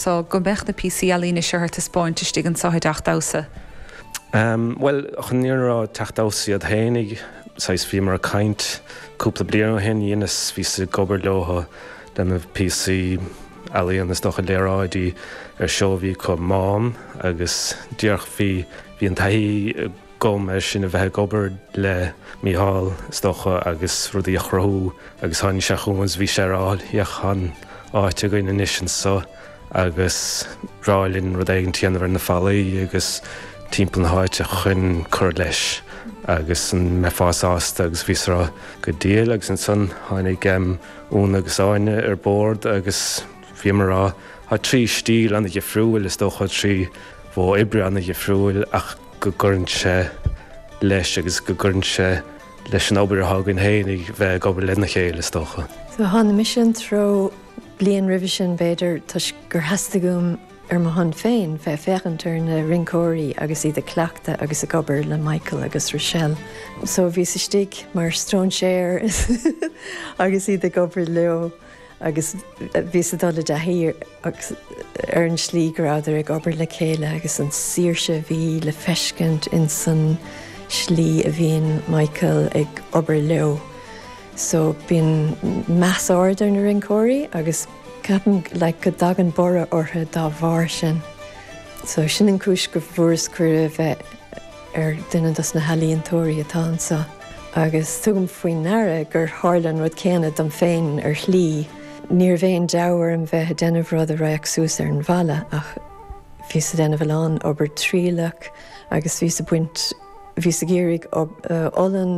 so go mbeadh na píosaí ealaíne seo ar taispeáint istigh anseo i dTeaċ Daṁsa? Bhuel, chuadar, d'iarr Teaċ Daṁsa iad fhéinig, saghas, bhíomar ag caint cúpla bliain ó shin, dheineas, bhíos ag obair leothu leis na píosaí ealaíon, is dócha léaráidí ar seó a bhí acu, MÁM, agus díreach bhí, bhí an taithí. agam ansan a bheith ag obair le Mícheál, is dócha, agus rudaí a chruthú agus tháinig sé chugam agus bhí sé ag rá féach tá an áit againn anois anso agus ba bhreá linn rud éigin a dhéanamh ar na fallaí agus timpeall na háite chun cur leis agus an mbeifeá sásta agus bhíos ag rá go diail agus ansan tháinig Úna agus Áine ar bord agus bhíomar ag rá tá trí stíl ana-dhifriúil is dócha trí mhodh oibre ana-dhifriúil ach go gcuireann sé leis agus go gcuireann sé leis an obair atá againn féinig a bheith ag obair lena chéile, is dócha. So thána-sa an treo bliain roimhe sin, b'fhéidir, toisc gur theastaigh uaim ar mo shon féin bheith ag féachaint ar na rinceoirí agus iad ag cleachtadh agus ag obair le Michael agus Rochelle. So bhíos istigh mar stróinséar agus iad ag obair leo. agus bhíos ag dul i dtaithí ar an slí go rabhadar ag obair le chéile agus an saoirse a bhí le feiscint ins an slí a bhíonn Michael ag obair leo. So bíonn meas ard aige ar na rinceoirí agus ceapaim like go dtagann borradh orthu dá bharr sin. So sin an chúis go bhfuaireas cuireadh bheith. ar dhuine dos na healaíontóirí atá anso agus tugaim faoi ndeara gur tharla an rud céanna dom féin ar shlí. Ní raibh aon deabhadh orm bheith a déanamh rud a raghadh suas ar an bhfalla ach bhíos a déanamh a lán obair trialach agus bhíos a baint, bhíos ag iarraidh olann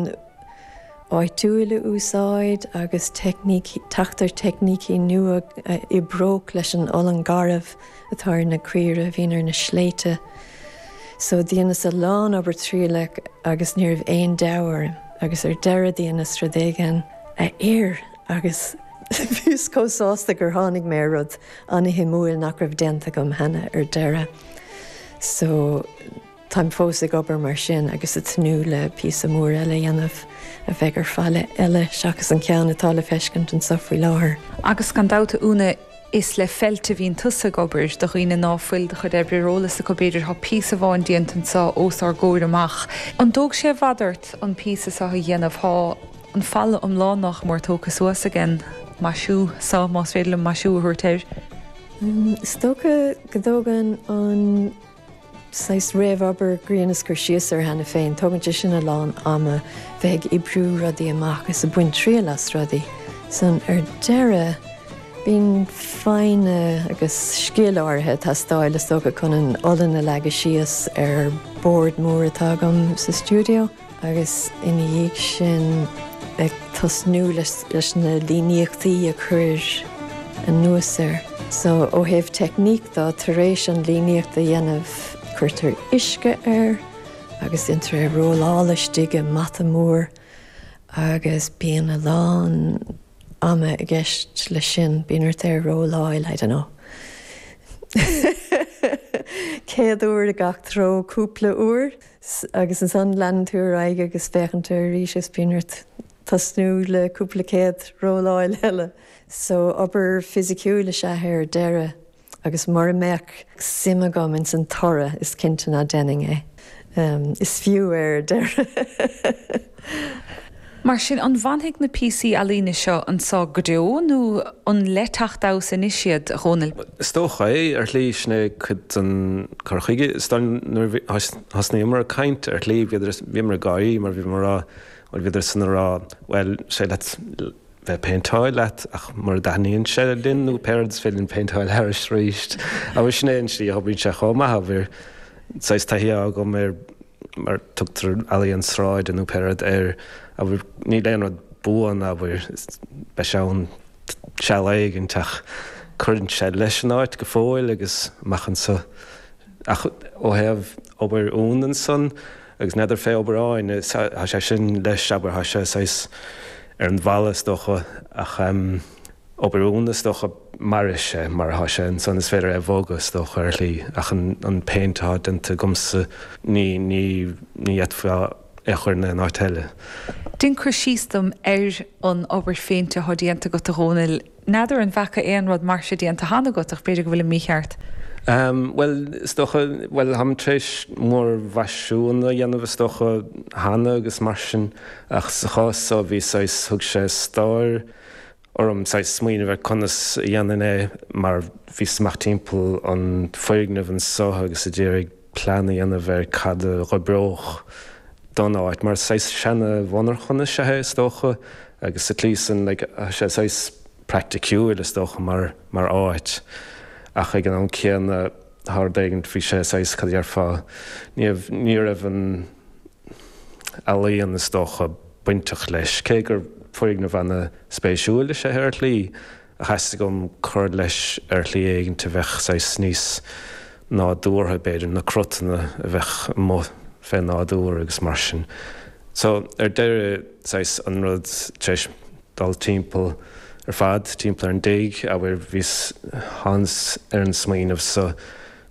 áitiúil a úsáid agus teacht ar teicnící nua a oibreodh leis an olann garbh. atá ar na caoire a bhíonn ar na sléibhte so dheineas a lán obair trialach agus ní raibh aon deabhadh orm agus ar deireadh dheineas rud éigin a oir agus bhíos chomh sásta gur tháinig mé ar rud ana-shuimiúil nach raibh déanta agam cheana ar deireadh so. Táim fós ag obair mar sin agus ag tnúth le píosa mór eile a dhéanamh a bheidh ar falla eile seachas an ceann atá le feiscint anso faoi láthair. Agus gan dabht a Úna, is le feilt a bhíonn tusa ag obair, do dhaoine ná fuil do chuid oibre ar eolas acu b'fhéidir, tá píosa amháin déanta anso os ár gcomhair amach. An dtóg sé i bhfad ort an píosa so a dhéanamh? Tá an falla iomlán nach mór tógtha suas ag an. maisiú so, más féidir liom maisiú a thabhairt air. Is dócha go dtógann an. saghas réamhobair go rabhas ag cur síos air cheana féin. Tógann sé sin a lán ama bheith ag oibriú rudaí amach is ag baint triail as rudaí. Ansan ar deireadh bíonn foighne agus scil áirithe ag teastáil is dócha chun an olann a leagadh síos ar bord mór atá agam sa stiúideo. agus ina dhiaidh sin ag tosnú leis na líníochtaí a chur anuas air. So, ó thaobh teicníc de, tar éis an líníocht a dhéanamh, cuirtear uisce air agus déantar é a rolláil istigh i mbata mór agus bíonn a lán ama i gceist leis sin, bíonn ort é a rolláil, I dunno, céad uair i gach treo cúpla uair. Agus ansan leanann tú ar aghaidh agus féachann tú arís is bíonn ort tosnú le cúpla céad rolláil eile. So obair fisiciúil is ea é ar deireadh agus mura mbeadh suim agam ins an toradh is cinnte ná déanfainn é. Is fiú é ar deireadh. Mar sin, an bhfanfaidh na píosaí ealaíne seo anseo go deo nó an le teacht anuas arís iad, a Dhónaill? Is dócha é, ar shlí. Sin é cuid den chur chuige. Nuair a thosnaíomar ag caint, ar shlí, bhíomar ag gáirí mar bhíomar ag rá, bhuel, bhíodar san ag rá, bhuel, tá cead agat bheith ag péinteáil leat ach mura dtaitníonn sé linn nó pé rud, is féidir linn, péinteáil air arís. Sin é an tslí a oibríonn sé chomh maith, abair. saghas taithí agam ar mar tugtar ealaíon sráide nó pé rud air, abair. Níl aon rud buan, abair. Beidh sé ann seal éigin ach cuireann sé leis an áit go fóill agus amach anso. Ach ó thaobh obair Úna ansan agus n'fheadar faoi obair Áine, tá sé sin leis, abair, tá sé saghas ar an bhfalla is dócha ach. obair Úna, is dócha. Mairfidh sé mar atá sé ansan, is féidir é a bhogadh, is dócha, ar shlí, ach an péint atá déanta agamsa, ní fhéadfá é a chur in aon áit eile. Déan cur síos dom ar an obair phéinte atá déanta agat, a Dhomhnaill. N'fheadar an bhfaca aon rud mar seo déanta cheana agat, ach b'fhéidir go bhfuilim mícheart. Bhuel, is dócha, bhuel, táim tar éis múrmhaisiúin a dhéanamh, is dócha, cheana agus mar sin, ach sa chás so, bhí saghas, thug sé stair, orm saghas smaoineamh ar conas a dhéanfainn é mar bhíos amuigh timpeall an foirgneamh anseo agus a d'iarraidh plean a dhéanamh ar cad a dh'oibreodh don áit mar saghas seana-mhonarcha is ea é is dócha agus sa tslí san like tá sé saghas praiticiúil is dócha mar mar áit ach ag an am céanna Tá rud éigint, bhí sé saghas, cad a déarfá, ní, ní raibh an ealaíon is dócha bainteach leis, cé gur foirgneamh ana spéisiúil is ea é ar shlí, ach theastaigh uaim cur leis ar shlí éigint a bheadh saghas níos nádúrtha b'fhéidir, na crotanna a bheadh amuigh fé nádúr agus mar sin. So ar deireadh saghas an rud, tar éis. dul timpeall ar fad, timpeall ar an dtigh, abair. Thánas ar an smaoineamh so,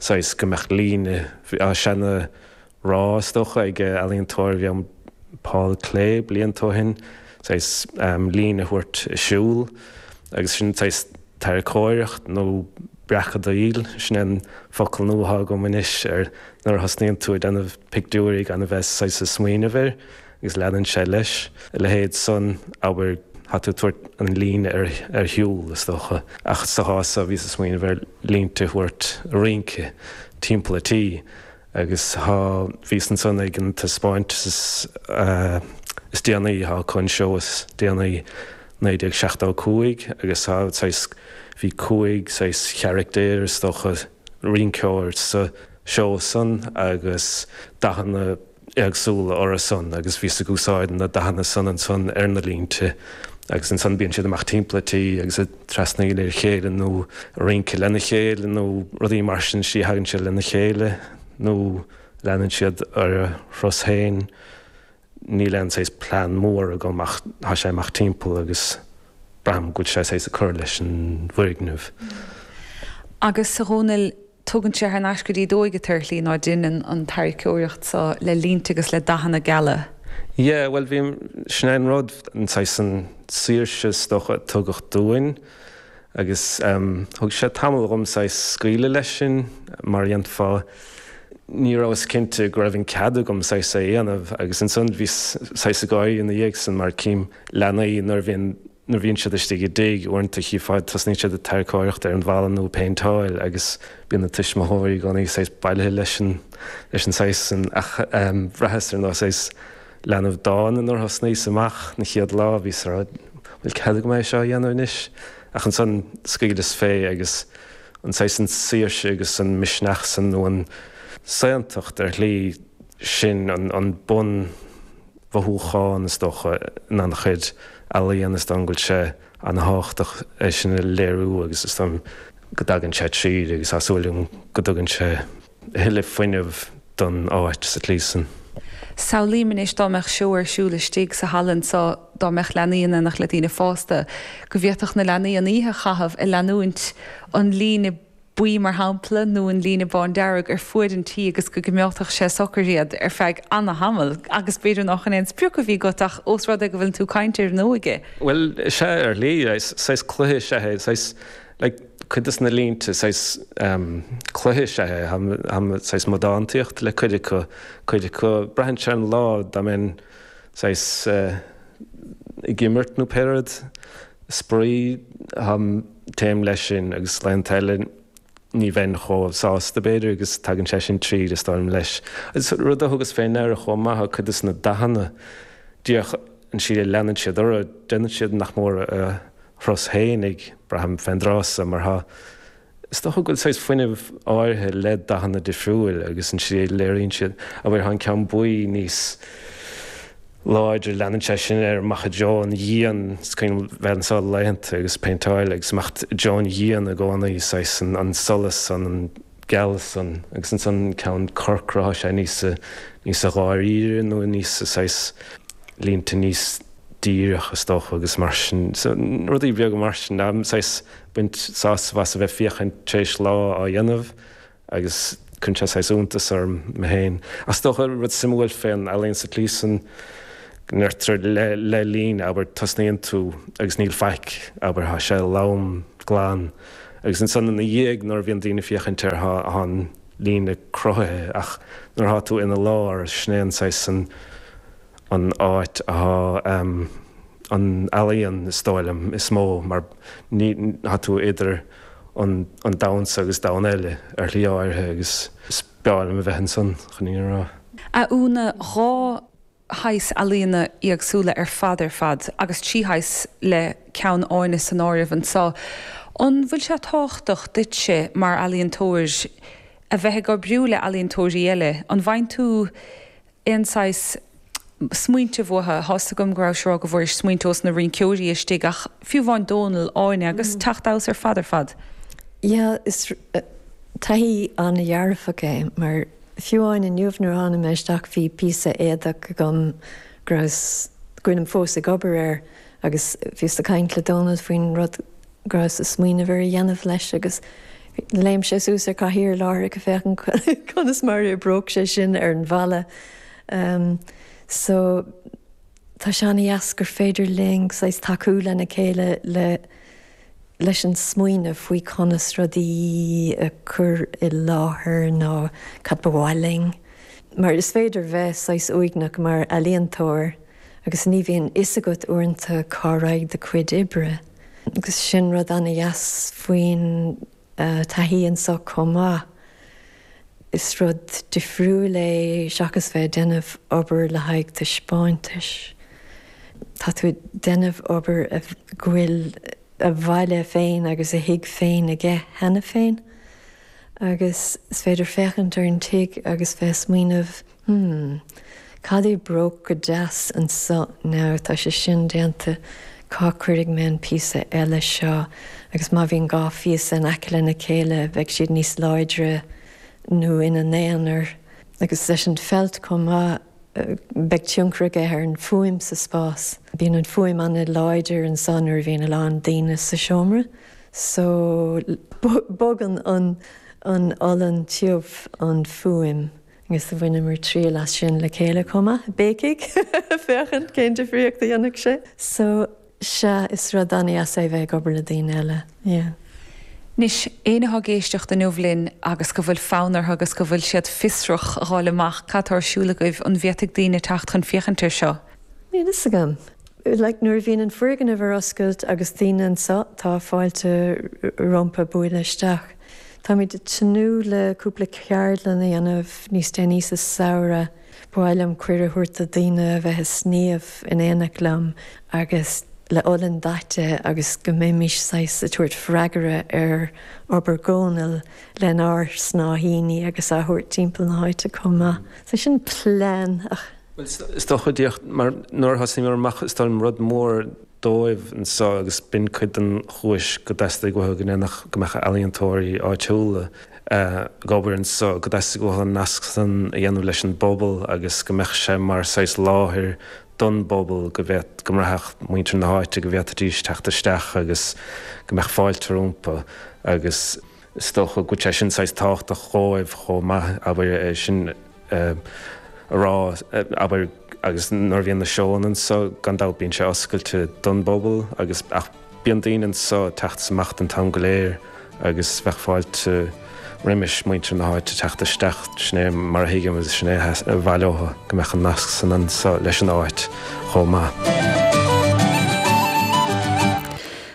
saghas go mbeadh líne, bhí seana rádh is dócha ag ealaíontóir a bhí ann Paul Klee blianta ó shoin, saghas líne a thabhairt ag siúl agus sin saghas tarraiceoireacht nó breacadaíl, sin é an focal nua atá agam anois ar nuair a thosnaíonn tú ag déanamh pictiúirí gan a bheith saghas ag smaoineamh air. agus leanann sé leis, a leithéid san, abair, tá tú ag tabhairt an líne ar shiúl, is dócha, ach sa chás so bhíos ag smaoineamh ar línte a thabhairt ag rince timpeall a' tí, agus chuas, bhíos ansan ag an taispeáint is déanaí, chuas chun an seó is déanaí 1975, agus saghas, bhí cúig saghas carachtar, is dócha, rinceoir sa seó san, agus dathanna. éagsúla orthu san agus bhíos ag úsáid na dathanna san ansan ar na línte agus ansan bíonn siad amach timpeall a' tí agus a' trasnaíl ar a chéile nó rince lena chéile nó rudaí mar sin so tagann siad lena chéile nó leanann siad ar a dtreo féin níl aon saghas plean mór agam ach tá sé imithe timpeall agus braithim go bhfuil sé saghas ag cur leis an bhfoirgneamh. Agus a Dhomhnaill Tugann sé thar n-ais go dtí d'óige tú ar shlí ná deineann an tarraiceoireacht so le línte agus le dathanna geala. Yeah, bhuel, bhí, sin é an rud, an saghas an saoirse is dócha a tugadh dom agus em, thóg sé tamall dhom saghas scaoileadh leis sin mar a déarfá, ní rabhas cinnte go raibh an cead agam saghas é a dhéanamh agus ansan bhíos saghas ag gáirí ina dhiaidh san mar cím leanaí nuair a bhíonn. nuair a bhíonn siad istigh i dtigh, uaireanta chífeá tosnaíonn siad ag tarraiceoireacht ar an bhfalla nó ag péinteáil agus bíonn na tuismitheoirí i gcónaí saghas bailithe leis an, leis an saghas sin ach ehm bhraitheas ar nós saghas leanbh dána nuair a thosnaíos amach an chéad lá, bhíos a' rá bhfuil cead agam é seo a dhéanamh anois? Ach ansan scaoileas fé agus an saghas an saoirse agus an misneach san nó an tsaontacht ar shlí sin an, an bun, mhothúchán, is dócha, in an-chuid ealaíon is dóigh liom go bhfuil sé an-tábhachtach é sin a léiriú agus is dóigh liom go dtagann sé tríd agus tá súil agam go dtugann sé a thuilleadh fuinnimh don áit sa tslí san. Samhlaím anois dá mbeadh seó ar siúl istigh sa halla anseo, dá mbeadh leanaí in éineacht le daoine fásta, go bhféadfadh na leanaí an oíche a chaitheamh ag leanúint an líne, buí mar shampla, nó an líne bándearg ar fud an tí agus go gcoimeádfadh sé socair iad ar feadh ana-thamall agus b'fhéidir nach in é an sprioc a bhí agat ach os rud é go bhfuileann tú ag caint air nó ag. Bhuel, sea, ar shlí, saghas cluiche is ea é, saghas, like, cuid de na línte, saghas, em, cluiche is ea é, em, saghas modántaíocht le cuid acu, cuid acu, braitheann sé ar an lá, dá mbeinn, saghas, eh, ag imirt nó pé rud, spraoi, em, Téim leis sin agus laethanta eile ní bheinn chomh sásta, b'fhéidir, agus tagann sé sin tríd, is dóigh liom, leis. Agus rud a thugas fé ndeara chomh maith ná cuid de na dathanna, díreach an tslí a leanann siad ort, déanann siad nach mór a dturas féin, ag braithim féin, tá a fhios agat, mar atá. Is dócha go bhfuil saghas fuinnimh áirithe le dathanna difriúil agus an tslí a léiríonn siad, a bhfuil an ceann buí níos, láidir. Leanann sé sin ar Macha Joan Dhian, coinneal bheith anso le laethanta agus péinteáil agus imeacht Joan Dhian i gcónaí, saghas an solas san, an gealas san agus ansan an ceann corcra, tá sé níos, níos dháiríre nó níos saghas, línte níos díreach is dócha agus mar sin, rudaí beaga mar sin, saghas bainim sásamh as a bheith féachaint tar éis lá á dhéanamh agus cuireann sé saghas iontas orm mé féin. Ach is dócha rud suimiúil fén ealaín sa tslí san go ndeirtear le líne, abair, tosnaíonn tú agus níl faic, abair, tá sé lom, glan, agus ansan ina dhiaidh nuair a bhíonn daoine ag féachaint air tá an líne cruthaithe ach nuair atá tú ina lár sin é an saghas an áit atá an ealaíon is dóigh liom is mó mar ní, tá tú idir. an domhan so agus domhan eile ar shlí áirithe agus is breá liom a bheith ansan chun é a rá. A Úna, dhá shaghas ealaíona éagsúla ar fad ar fad agus trí shaghas le ceann Áine san áireamh anso. An bhfuil sé tábhachtach duitse mar ealaíontóir a bheith ag oibriú le ealaíontóirí eile? An bhfaigheann tú aon saghas smaointe uathu. Thá's agam go rabhais á rá go bhfuairis smaointe ós na rinnceoirí istigh, ach fiú amháin Dónall, Áine agus a dtaithí sin ar fad ar fad. Yeah, is taithí an-dhearfach é, mar fiú amháin inniu nuair a thána mé isteach bhí píosa éadach agam go rabhas, go bhfuilim fós ag obair air, agus bhíos a' caint le Dónall faoin rud go rabhas ag smaoineamh ar a dhéanamh leis agus léim sé suas ar cathaoir láithreach ag féachaint conas mar a oibreodh sé sin ar an bhfalla. So, tá sé an-dheas gur féidir linn saghas tacú lena chéile le, leis an smaoineamh faoi conas rudaí a cur i láthair nó cad ba mhaith linn, mar is féidir bheith saghas uaigneach mar ealaíontóir. agus ní bhíonn fhios agat uaireanta cá raghaidh do chuid oibre agus sin rud an-deas faoin taithí anseo chomh maith. Is rud difriúil é seachas bheith ag déanamh obair le haghaidh taispeáintais. Tá tú ag déanamh obair go bhfuil a bhaile féin agus a thig féin aige cheana féin agus is féidir féachaint ar an tig agus bheith ag smaoineamh, Hmm. Cad a d'oibreodh go deas anseo now? Tá sé sin déanta. Cá cuirfidh mé an píosa eile seo? Agus má bhíonn dhá phíosa in aice lena chéile, bheidh siad níos láidre nó ina n-aonair. Agus leis an felt chomh maith, beidh tionchar aige ar an fuaim sa spás. Bíonn an fuaim an-láidir anseo nuair a bhíonn a lán daoine sa seomra. So, bogann an olann tiubh an fuaim. agus bhaineamar triail as sin le chéile chomh maith, béicigh, féachaint cén difríocht a dhéanfadh sé. So, sea, is rud an-deas é bheith ag obair le daoine eile, yeah. Anois, éinne atá ag éisteacht inniu linn agus go bhfuil fonn orthu agus go bhfuil siad fiosrach a dháil amach cad atá ar siúl agaibh, an bhféadfadh daoine teacht chun féachaint air seo? Níl fhios agam. Like, nuair a bhíonn an foirgneamh ar oscailt agus daoine anseo, tá fáilte rompu bualadh isteach. Táimid ag tnúth le cúpla ceardlann a dhéanamh níos déanaí sa samhradh. Ba mhaith liom cuireadh a thabhairt do daoine a bheith ag sníomh in éineacht liom agus le olann daite agus go mbeimis saghas ag tabhairt freagra ar obair Dhónail lenár snáithíní agus á thabhairt timpeall na háite chomh maith. So sin plean ach. Bhuel is dócha mar nuair a thosaíomar amach is dóigh liom rud mór dóibh anso agus b'in cuid den chúis gur theastaigh uathu go ndéanfadh, go mbeadh ealaíontóirí áitiúla ag obair anso, gur theastaigh uathu an nasc san a dhéanamh leis an bpobal agus go mbeadh sé mar saghas láthair don bpobal, go bhféadfadh, go mbraithfeadh muintir na háite go bhféadfaidís teacht isteach agus go mbeadh fáilte rompu agus. Is dócha go bhfuil sé sin saghas tábhachtach dhóibh chomh maith, abair, é sin a rá, abair, agus nuair a bhíonn na seónna anso, gan dabht bíonn sé oscailte don bpobal agus, ach bíonn daoine anso isteach is amach an t-am go léir agus bheadh fáilte roimis muintir na háite teacht isteach, sin é mar a thuigimse, sin é ab áil leotha go mbeadh an nasc san anso leis an áit chomh maith.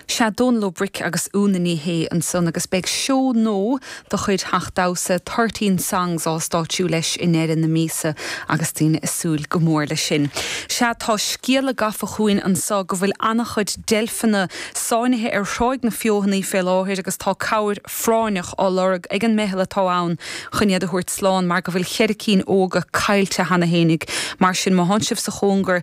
Sea, Dónal Ó Bric agus Úna Ní Shé ansan agus beidh seó nua de chuid Theach Damhsa Thirteen Songs á stáitsiú leis i ndeireadh na míosa agus daoine ag súil go mór leis sin. Sea, tá scéala gafa chugainn anso go bhfuil an-chuid deilfeanna sáinnithe ar Thráigh na Feothanaí fé láthair agus tá cabhair phráinneach á lorg ag an meitheal atá ann chun iad a thabhairt slán mar go bhfuil cheithre cinn óga caillte cheana fhéinig. Mar sin, má thánn sibh sa chóngar,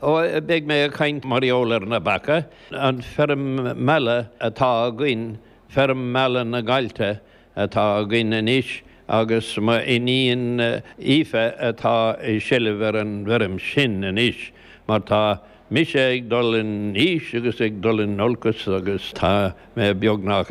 Beidh mé ag caint mar gheall ar na beacha, an feirm meala atá againn, feirm meala na nGaillte atá againn anois agus mo iníon Aoife atá i seilbh ar an bhfeirm sin anois mar tá mise ag dul in aois agus ag dul in olcas agus tá mé beagnach